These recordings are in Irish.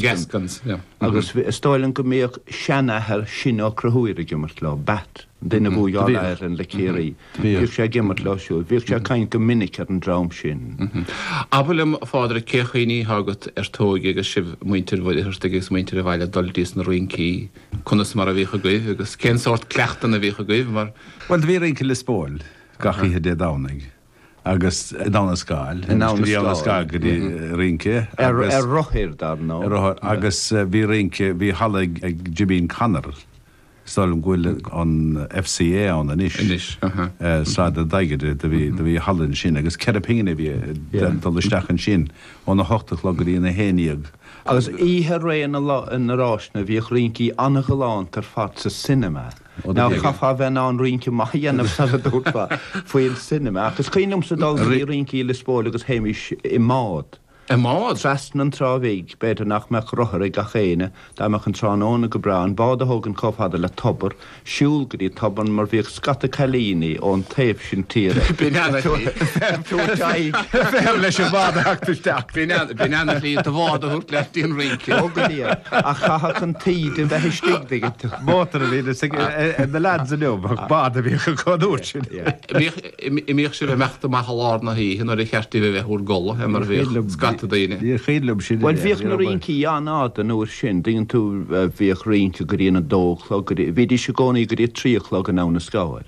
Gaskins, agus is dóigh liom go mbíodh seanathair Shinn Ó Conchúir ag imirt leo, Batt, an duine a bhuaigh All Ireland le Ciarraí, bhíodh sé ag imirt leo siúd. Bhíodh sé ag caint go minic ar an dream sin. Abair liom, a Phádraic, cén cuimhní atá agat ar t'óige agus sibh, muintir Mhuircheartaigh agus muintir an bhaile ag dul dtís na rincí? Conas mar a bhíodh agaibh agus cén sórt cleachtanna a bhíodh agaibh mar. Bhuel, do bhí rince i Lios Póil gach oíche Dé Domhnaigh. agus in Abhainn an Scáil. In Abhainn an Scáil. Bhí Abhainn an Scáil go dtí rince agus. Ar rothair dar ndóigh. Ar rothair agus bhí rince, bhí halla ag Jimín Connor. Is dóigh liom go bhfuil an FCA ann anois. Anois, aha. Sráid an Dadhgaide do bhí halla ansin agus ceithre phingin a bhí ag dul isteach ansin ó na hocht a chlog go dtí an a haon déag. Agus oíche ré na ráiseanna bhíodh rincí an-ghalánta ar fad sa cinema. Ná caithfeá a bheith in ann rince maith a dhéanamh sara dtabharfá faoin cinema. Ach is cuimhin liomsa dul go dtí rincí i Lios Póil agus théimis i mbád. I mbád? Trasna an Trá Bhig. B'fhéidir nach mbeadh rothar ag gach éinne. Dá mbeadh an tráthnóna go breá, an bád a thógaint chomh fada le tobar, siúl go dtí tobar mar bhíodh scata cailíní ón taobh sin tíre ag tabhairt aghaidh ar leis an bhád a theacht isteach. B'in an tslí do bhád a thabhairt leat dtí an rince. Ó go deimhin. Ach chaithfeadh an taoide a bheith istigh, dtuigeann tú. Mótar a bhíonn ag na leads inniu ach bád a bhíodh acu an uair sin. An mbíodh sibh ag imeacht amach i lár na hoíche nuair ba cheart daoibh a bheith bhur gcodladh mar bhíodh scata daoine. Ní cuimhin liom sin. Bhuel bhíodh na rincí an-fhada an uair sin, dtuigeann tú, bhíodh rince go dtí an a dó a chlog, bhídís i gcónaí go dtí a trí a chlog in Abhainn an Scáil.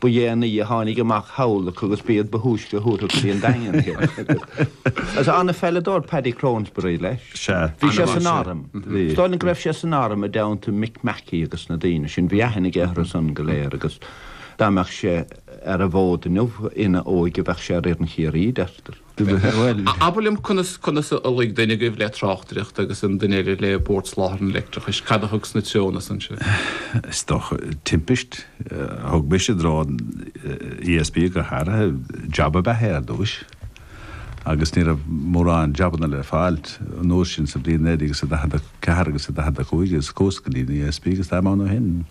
Ba dhéanaí a tháinig amach thall acu agus b'iad ba thúisce a thabharfadh go dtí an Daingean é. Sea, an-pheileadóir Paddy Cronesberry, leis. Sea. Bhí sé san arm. Is dóigh liom go raibh sé san arm i dteannta Mick Mackey agus na daoine sin. Bhí aithne aige orthu san go léir agus dá mbeadh sé ar an bhfód inniu ina óige bheadh sé ar fhoireann Chiarraí, deirtear. Abair liom conas conas a luigh duine agaibh le tráchtaireacht agus an duine eile le Bord Soláthair an Leictreachais. Cad a thug sna treonna san sibh? Is dócha timpist a thug mise i dtreo an ESB go háirithe. Jab ab ea é ar dtúis agus ní raibh mórán jabanna le fáil an uair sin sa bhliain 1944 agus 1945 agus chuas go dtí an ESB agus táim ann ó shin.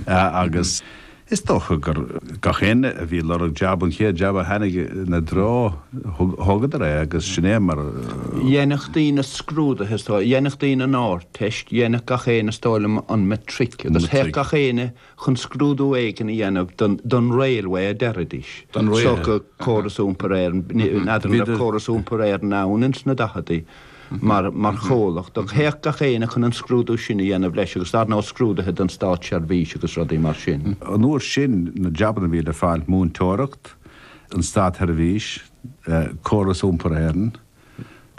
Agus is dócha gur gach éinne a bhí ag lorg jab, an chéad jab a tháinig ina dtreo, thógadar é agus sin é mar a. Dhéanfadh daoine scrúduithe is dóigh, dhéanfadh daoine an Ardteist, dhéanfadh gach éinne is dóigh liom an Matric agus théadh gach éinne chun scrúdú éigin a dhéanamh don Railway a deiridís, Córas Iompair Éireann, n'fheadar an raibh Córas Iompair Éireann ann ins na daicheadaí. mar chomhlacht, ach théadh gach éinne chun an scrúdú sin a dhéanamh leis agus dar ndóigh scrúduithe don státseirbhís agus rudaí mar sin. An uair sin na jabanna a bhí le fáil, múinteoireacht, an státsheirbhís, córas iompair Éireann.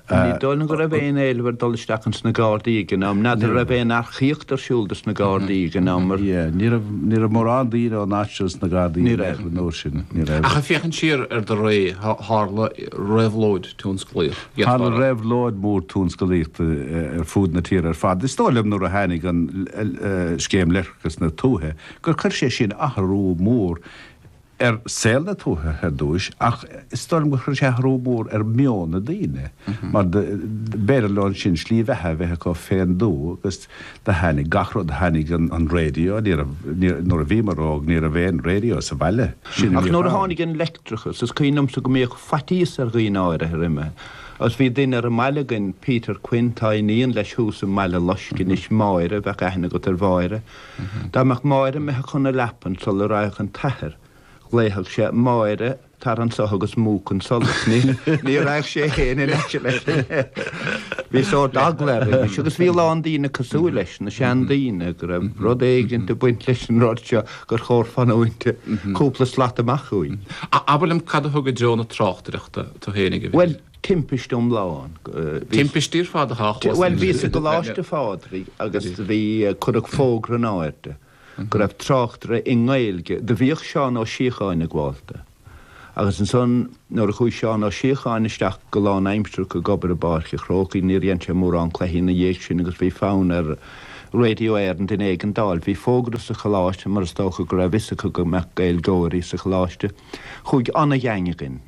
Ní dóigh liom go raibh aon éileamh ar dul isteach ins na Gardaí ag an am, n'fheadar an raibh aon earcaíocht ar siúl dos na Gardaí ag an am. Ní raibh mórán daoine ón áit seo sna Gardaí an uair sin. Ach ag féachaint siar ar do ré, tharla réabhlóid. tionsclaíoch Tharla leasmhara. réabhlóid mhór tionscalaíochta ar fud na tíre ar fad. Is dóigh liom nuair a tháinig an Scéim Leictreachais na Tuaithe gur chuir sé sin athrú mór ar saol na tuaithe ar dtúis ach is dóigh liom gur chuir sé athrú mór ar mheon na daoine mar b'fhéidir leo ansin slí bheatha a bheith acu féin dó agus Do tháinig gach rud, tháinig an raidió, ní raibh, nuair a bhíomar óg ní raibh aon raidió sa bhaile, sin a bhíodh ann. Ach nuair a tháinig an leictreachas, is cuimhin liomsa go mbíodh faitíos ar dhaoine áirithe roimhe agus bhí duine ar an mbaile againn, Peter Quinn, tá iníon leis thuas i mBaile Loiscthe anois, Máire, bheadh aithne agat ar Mháire. Dá mbeadh Máire imithe chun na leapan sula raghadh an t-athair, ghlaofadh sé, 'Máire, Tar anso agus múch an solas. Ní raghadh sé fhéin in aice leis. Bhí sórt eagla air anois agus bhí a lán daoine cosúil leis, na sean daoine, go raibh rud éigin ag baint leis an rud seo gur chóir fanúint cúpla slat amach uaidh. Abair liom, cad a thug i dtreo na tráchtaireachta tú fhéin ag an bhFéile? Bhuel, timpist iomlán. Timpistí ar fad athá a chlos. Bhuel, bhíos i gColáiste Phádraig agus bhí, cuireadh fógra in áirde. go raibh tráchtaire i nGaeilge, do bhíodh Seán Ó Síocháin ag gabháilt dó. Agus ansan nuair a chuaigh Seán Ó Síocháin isteach go lánaimsireach ag obair i bPáirc a' Chrócaigh níor dhein sé mórán cluichí ina dhiaidh sin agus bhí fonn ar Radio Éireann duine éigin d'fháil. Bhí fógra sa choláiste mar is dócha go raibh fhios acu go mbeadh Gaeilgeoirí sa choláiste. Chuaigh an-gheaing againn.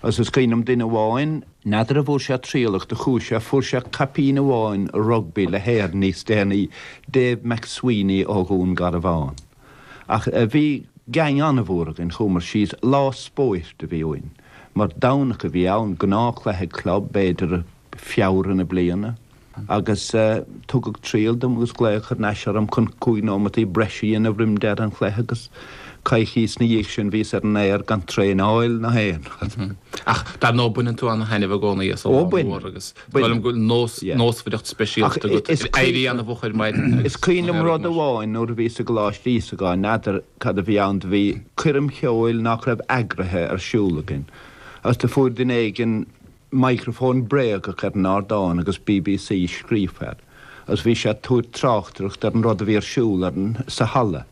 Is is cuimhin liom duine amháin. N'fheadar an bhfuair sé triail ach do chuaigh sé, fuair sé caipín amháin rugbaí le hÉirinn níos déanaí, Dave McSweeney ó Dhún Garbhán. Ach bhí geaing an-mhór againn, chuamar síos, lá spóirt a bhí uainn, mar Domhnach a bhí ann, gnáthchluiche club b'fhéidir, Feabhra na bliana agus tugadh triail dom agus glaodh thar n-ais orm chun cúig nóimeataí breise a dhéanamh roim deireadh an chluiche agus coicís na dhiaidh sin bhíos ar an aer gan traenáil ná aon rud. Ach dar ndóigh baineann tú ana thaitneamh i gcónaí as an lá mór agus bainim. Sílim go bhfuil nós, nósmhaireacht speisialta agat agus éirí ana mhór mar sin. Is cuimhin liom rud amháin nuair a bhíos i gColáiste Íosagáin, n'fheadar cad a bhí ann do bhí coirm cheoil nách raibh eagraithe ar siúl againn agus do fuair duine éigin microphone bréagach ar an ardán agus bbc scríofa air agus bhí sé ag tabhairt tráchtaireachta ar an rud a bhí ar siúl ar an stáitse sa halla.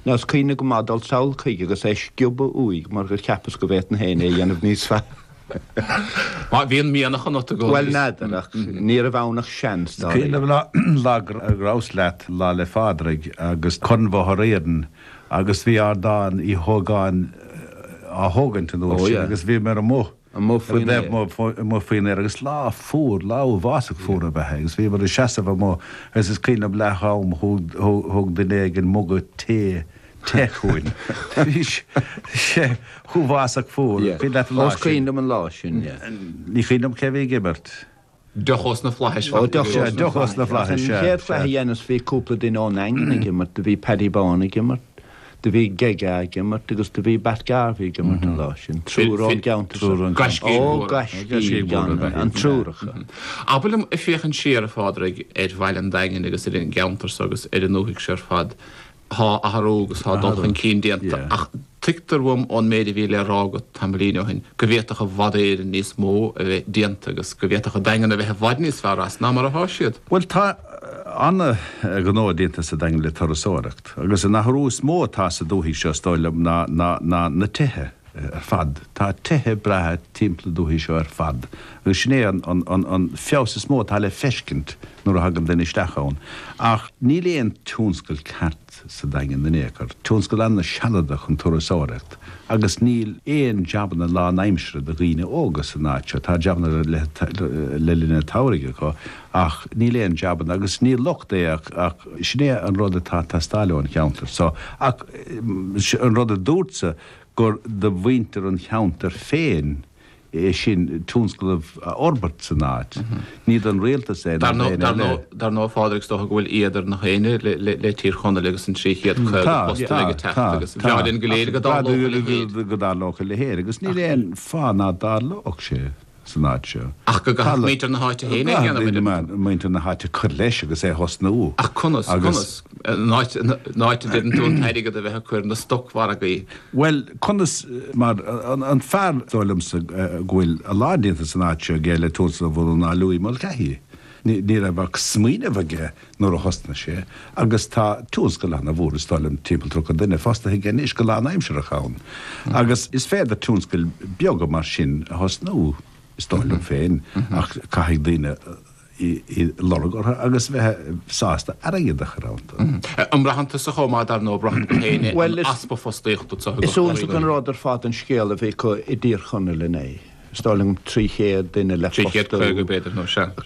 Now is cuimhin liom go maith dul sall chuige agus é sciobadh uaidh mar gur cheapas go bhféadfainn féin é a dhéanamh níos fearr. Má bhíonn mianach ionat. Bhuel n'fheadar ach ní raibh ann ach seans dár. Cuimhin liom go maith lá gur rabhas leat Lá 'le Pádraig agus Corn Bhóthar Éireann agus bhí ardán Uí hÓgáin á thógaint an uair sin agus bhíomar an. amuigh faoin aer. Bhíomar amuigh faoin aer agus lá fuar, lá uafásach fuar ab ea é, agus bhíomar ag seasamh amuigh agus is cuimhin liom leath-am thug duine éigin muga tae, te, chugainn. Bhí sé chomh huafásach fuar. An cuimhin leat an lá sin? Ó is cuimhin liom an lá sin, yeah. Ní chuimhin liom cé a bhí ag imirt. Deoch ós na flaithis. Ó, deoch, sea, deoch ós na flaithis, sea, sea. An chéad chluiche a dheineas bhí cúpla duine ón Daingean ag imirt, do bhí Paddy Bán ag imirt, do bhí Gega ag imirt agus do bhí Batt Garvey ag imirt an lá sin, triúr ón gceantar seo. Ó, gaiscígh mhóra ab ea an triúr acu. Abair liom, ag féachaint siar, a Phádraig, ar Bhaile an Daingin agus ar an gceantar so agus ar an ndúthaigh seo ar fad, Tá athrú agus tá dul chun cinn déanta ach tuigtear dom ón méid a bhí le rá agat tamaillín ó shin go bhféadfadh i bhfad Éireann níos mó a bheith déanta agus go bhféadfadh an Daingean a bheith i bhfad níos fearr as ná mar atá sé. Bhuel tá an-ghnó déanta sa Daingean le turasóireacht agus an t-athrú is mó atá sa dúthaigh seo is dóigh liom ná na tithe. ar fad. Tá tithe breátha timpeall na dúthaí seo ar fad agus sin é an feabhas is mó atá le feiscint nuair a thagann duine isteach ann. Ach níl aon tionscal ceart sa Daingean in aon chor. Tionscal an-shealadach an turasóireacht agus níl aon jabanna lánaimseartha do dhaoine óga san áit seo. Tá jabanna le linn an tsamhraidh acu ach níl aon jabanna agus ní locht é ach sin é an rud atá ag teastáil ón gceantar so. Ach an rud a dúrtsa, gur do mhuintir an cheantair féin é sin tionscnamh a fhorbairt san áit. Ní don rialtas é nó d'aon eile é. Dar ndóigh, a Phádraig, is dócha go bhfuil éad ar gach éinne le Tír Chonaill agus an 350 postanna ag teacht agus ba bhreá linn go léir go dtarlódh a leithéid. Go dtarlódh a leithéid agus níl aon fáth ná dtarlódh sé. san áit seo. Ach go gcaithfeadh muintir na háite féin é a dhéanamh, an ea? Caithfidh muintir na háite cur leis agus é a thosnú. Ach conas? Conas? An áit a deireann tú an t-airgead a bheith á chur sna stocmhargaí? Bhuel, conas? Mar, an fearr, is dóigh liomsa go bhfuil a lán déanta san áit seo aige le tionscal a bhunú ná Louis Mulcahy. Ní raibh ach smaoineamh aige nuair a thosnaigh sé agus tá tionscal ana-mhór is dóigh liom, timpeall tríocha duine, fostaithe aige anois go lánaimseartha ann agus is féidir tionscail beaga mar sin a thosnú is dóigh liom féin ach caithfidh daoine iad a lorg agus bheith sásta airgead a chur iontu. An mbraitheann tusa chomh maith dar ndóigh, braitheann tú féin é, an easpa fostaíochta anseo i gCorca Dhuibhne? Is iontach an rud ar fad an scéal a bhí acu i dTír Chonaill inné. Is dóigh liom 300 duine le fostú.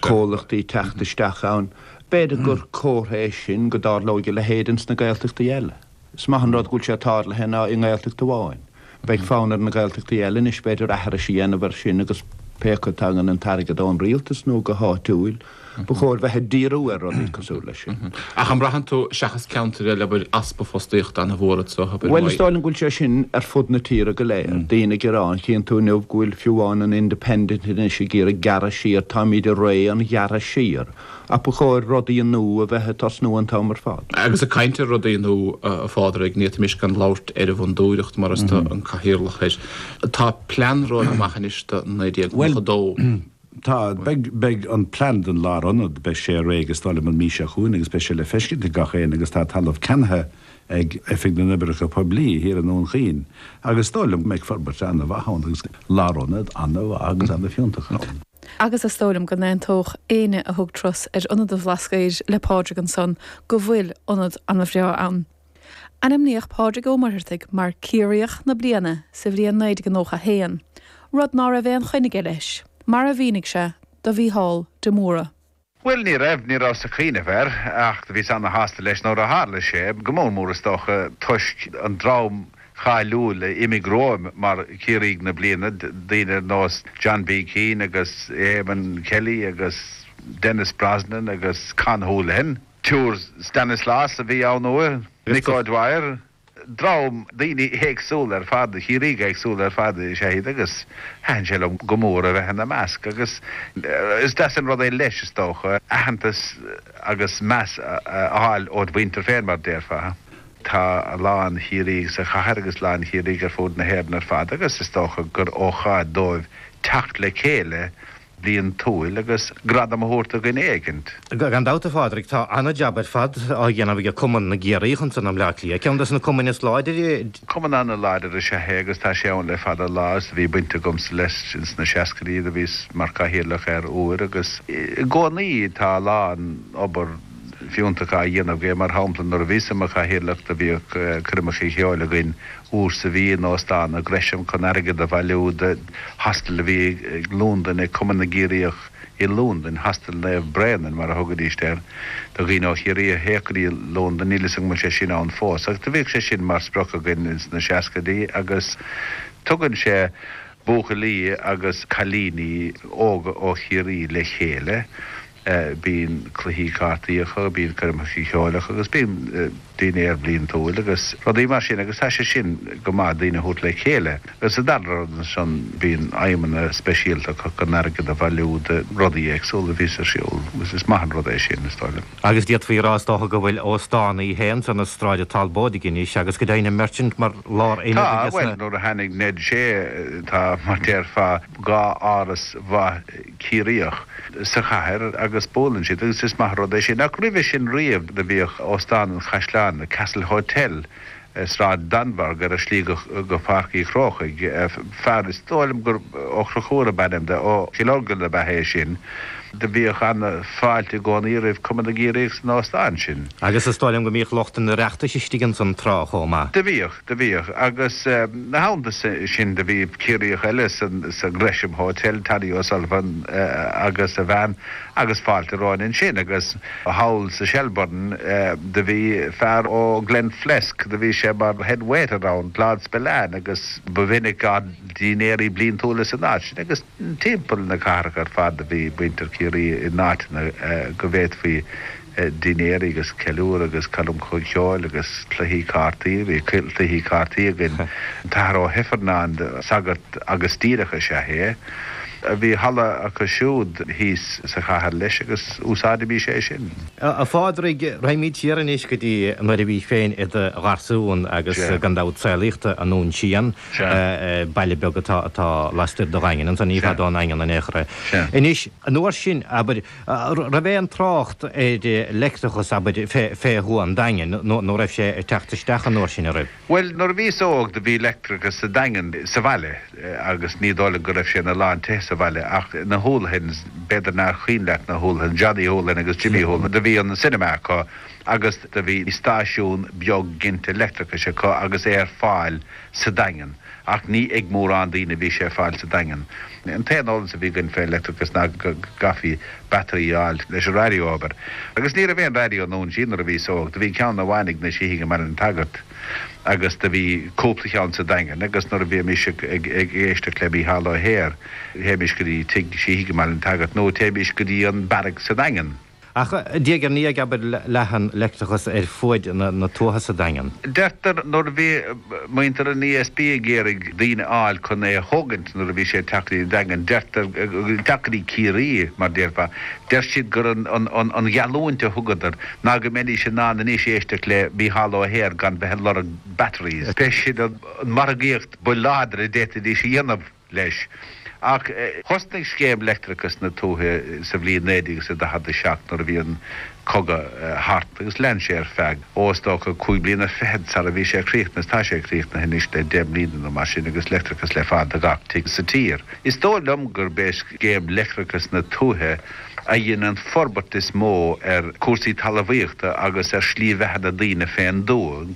Comhlachtaí ag teacht isteach ann. B'fhéidir gur comhartha é sin go dtarlóidh a leithéid ins na Gaeltachtaí eile. Is maith an rud go bhfuil sé tarlaithe i nGaeltacht amháin. Beidh fonn ar na Gaeltachtaí eile anois b'fhéidir aithris a dhéanamh ar sin agus pé acu tagann an t-airgead ón rialtas nó go háitiúil, Ba chóir bheith ag díriú ar rudaí cosúil leis sin. Ach an mbraitheann tú, seachas ceantair eile, go bhfuil easpa fostaíochta ana mhór anseo? Bhuel, is dóigh liom go bhfuil sé sin ar fud na tíre go léir. Daoine ag gearán. Chíonn tú inniu go bhfuil fiú amháin an Independent anois ag iarraidh gearradh siar. Táimíd i ré an ghearradh siar. Ach ba chóir rudaí nua a bheith ag tosnú an t-am ar fad. Agus ag caint ar rudaí nua, a Phádraig, ní fhéadfaimis gan labhairt ar an bhFondúireacht mar is tú an cathaoirleach air. Tá plean romhaibh amach anois do 1992. Tá, beidh, beidh an plean don lárionad, beidh sé réidh is dóigh liom an mhí seo chugainn agus beidh sé le feiscint ag gach éinne agus tá talamh ceannaithe ag Oifig na nOibreacha Poiblí thiar i nDún Chaoin agus is dóigh liom go mbeidh forbairt an-mhaith ann agus lárionad an-mhaith agus an-fhiúntach ann. Agus is dóigh liom go n-aontódh éinne a thug turas ar Ionad an Bhlascaoid le Pádraig ansan go bhfuil ionad an-bhreá ann. Ainmníodh Pádraig Ó Muircheartaigh mar Ciarraíoch na Bliana sa bhliain 1991, rud ná raibh aon choinne aige leis, mar a mhínigh sé do Mhícheál de Mórdha. Bhuel, ní raibh, ní rabhas ag cuimhneamh air, ach do bhíos ana-shásta leis nuair a tharla sé, go mór mór is dócha toisc an dream cáiliúil a d'imigh romhaim mar Chiarraígh na Bliana, daoine ar nós John B. Keane agus Éamonn Kelly agus Denis Brosnan agus Con Houlihan. An tSiúr Stanislaus a bhí anuraidh. Mick O'Dwyer, dream daoine éagsúla ar fad, Ciarraígh éagsúla ar fad is ea iad agus thaitin sé liom go mór a bheith ina measc agus is deas an rud é leis, is dócha, aitheantas agus meas a fháil ód mhuintir féin, mar a déarfá. Tá a lán Ciarraíoch sa chathair agus a lán Ciarraíoch ar fud na hÉireann ar fad agus is dócha gur ócáid dóibh teacht le chéile bliantúil agus gradam a thabhairt do dhuine éigin. Gan dabht a Phádraig, tá an-jab ar fad á dhéanamh ag Cumann na gCiarraíoch anso i mBleá Cliath. Ceann des na cumainn is láidre. Cumann an-láidir is ea é agus tá sé ann le fada an lá agus do bhí baint agamsa leis ins na seascaidí. Do bhíos mar Cathaoirleach air uair agus i gcónaí tá a lán obair fiúntach á dhéanamh aige. Mar shampla nuair a bhíos i mo Chathaoirleach do bhíodh coirmeacha ceoil againn i Rossa Buí nó sa Ghresham chun airgead a bhailiú do Hostel a bhí ag Lúndain ag Cumann na gCiarraíoch i Lúndain, Hostel Naomh Bréanainn mar a thugaidís air do dhaoine ó Chiarraí a théadh go dtí Londain, níl 'fhios agam an bhfuil sé sin ann fós ach do bhíodh sé sin mar sprioc againn sna seascaidí agus tugann sé buachaillí agus cailíní óga ó Chiarraí le chéile. Bíonn cluichí cártaí acu, bíonn coirmeacha ceoil acu agus bíonn dinnéar bliantúil agus rudaí mar sin agus tá sé sin go maith, daoine a thabhairt le chéile. Agus sa dara rud ansan bíonn aidhmeanna speisialta acu chun airgead a bhailiú do rudaí éagsúla a bhíos ar siúl agus is maith an rud é sin, is dóigh liom. Agus d'fhéadfaí a rá is dócha go bhfuil Óstán Uí Shé ansan i Sráid Talbóidigh anois agus go deimhin an Merchant mar lár Tá, aonad de na. bhuel nuair a tháinig Ned Shea tá mar déarfá dhá áras mhaith, Ciarraíoch sa chathair agus buaileann siad agus is maith an rud é sin. Ach roimhe sin riamh do bhíodh Óstán an Chaisleáin, The Castle Hotel, i Sráid Danmhairg ar an slí go Pháirc Uí Chrócaigh. Fear, is dóigh liom gur Ó Crochúir ab ainm do, ó Chill Orglan ab ea é sin, do bhíodh an-fháilte i gcónaí roimh Cumann na gCiarraíoch san óstán sin. Agus is dóigh liom go mbíodh lucht an Oireachtais istigh ansan tráth chomh maith. Do bhíodh. Do bhíodh. Agus na hamanta sin do bhí Ciarraíoch eile sa Gresham Hotel, Toddy O'Sullivan agus a bhean agus fáilte romhainn ansin. Agus thall sa Shelbourne do bhí fear ó Glenflesk, do bhí sé mar head waiter ann, Claude Spillane agus ba mhinic ár ndínnéirí bliantúla san áit sin. Agus timpeall na cathrach ar fad do bhí muintir Chiarraí in áiteanna go bhféadfaí dinnéirí agus ceiliúr agus coirmeacha ceoil agus cluichí cártaí. Bhí cluichí cártaí againn. An tAthair Ó hIfearnáin, sagart agus díreach is ea é. Bhí halla acu siúd thíos sa chathair leis agus úsáidimís é sin. A Phádraig, raghaimid siar anois go dtí nuair a bhís féin i do gharsún agus gan dabht saolaíodh tú i nDún Síon, baile beag atá lastoir de Dhaingean, ansan ní fada ón nDaingean in aon chor é. Anois, an uair sin, abair, Raibh aon trácht ar leictreachas abair fé Thuath an Daingin nó raibh sé ag teacht isteach an uair sin an raibh? Bhuel, nuair a bhíos óg do bhí leictreachas sa Daingean, sa bhaile, agus ní dóigh liom go raibh sé ina lán tithe sa bhaile ach na Houlihans, b'fhéidir nár chuimhin leat na Houlihans, Johnny Houlihan agus Jimmy Houlihan, do bhí an cinema acu agus do bhí stáisiún beag ginte leictreachais acu agus é ar fáil sa Daingean. Ach ní ag mórán daoine a bhí sé ar fáil sa Daingean. An t-aon eolas a bhí againn fé leictreachas ná go gcaithfí battery a fháil leis an raidió a obair. Agus ní raibh aon raidió i nDún Síon nuair a bhíos óg. Do bhí ceann amháin ag na Síthigh i mBaile an tSagairt agus do bhí cúpla cheann sa Daingean agus nuair a bhímis ag éisteacht le Mícheál Ó hEithir théimis go dtí tigh Síthigh i mBaile an tSagairt nó théimis go dtí an Barracks sa Daingean. Ach diaidh ar ndiaidh abair leath an leictreachas ar fuaid na tuaithe sa Daingean. Deirtear nuair a bhí muintir an ESB ag iarraidh daoine a fháil chun é a thógaint nuair a bhí sé ag teacht go dtí an Daingean, deirtear, teacht go dtí Ciarraí mar déarfá, deir siad gur an gheallúint a thugadar ná go mbeidís in ann anois éisteacht le Mícheál Ó hEithir gan bheith ag lorg batteries. B'é siúd an mhargaíocht ba láidre a d'fhéadfaidís a dhéanamh. leis. Ach thosnaigh scéim leictreachas na tuaithe sa bhliain 1947 nuair a bhí an cogadh thart agus lean sé ar feadh, ó is dócha, cúig bliana fichead sara bhí sé críochnaithe. Tá sé críochnaithe anois le deich mbliana nó mar sin agus leictreachas le fáil do gach tigh sa tír. Is dóigh liom gurb é scéim leictreachas na tuaithe a dhein an forbairt is mó ar cúrsaí talamhaíochta agus ar slí bheatha na daoine fén dtuath.